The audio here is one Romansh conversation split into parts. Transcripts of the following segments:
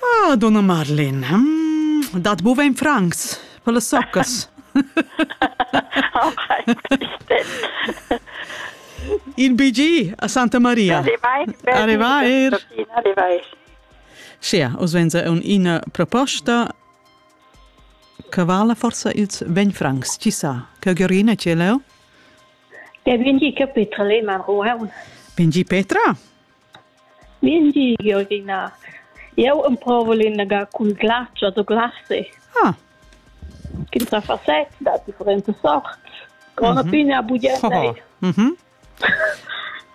Ah, donna Madeleine, hm, dat buca in francs per las soccas. In BG a Santa Maria. Arrivai. Arrivai. Sia, os venza un ina proposta che vala forse ils 20 francs, ci sa, che Giorina ce leo? Der bin die Kapitel in Ruhe. Bin die Petra? Min di, Georgina, jeu emprovel inaga cun glatschers u glassi. Ah. Ch'ins ha facet da differentas sorts. Grona mhm. pina buglienda. Oh. Mhm.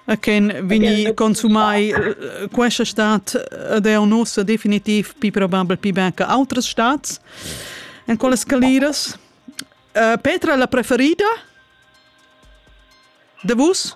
A quem vini consumai eh, questa stat ed è un usso definitiv più probabile più bene che altre stats in quelle scaliras uh, Petra la preferida de vus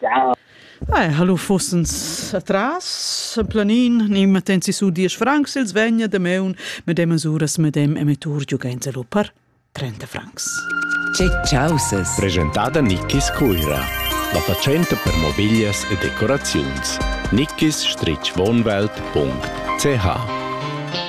Ei, hallo fussens atras planin, ni matten si su diesch francs ils vegna damaun medemas uras medem emettur giugainza lu per 30 francs. Che causes! Presentada Nickis Cuira, la fatschenta per mobiglias e decoraziuns. Nickis-Wohnwelt.ch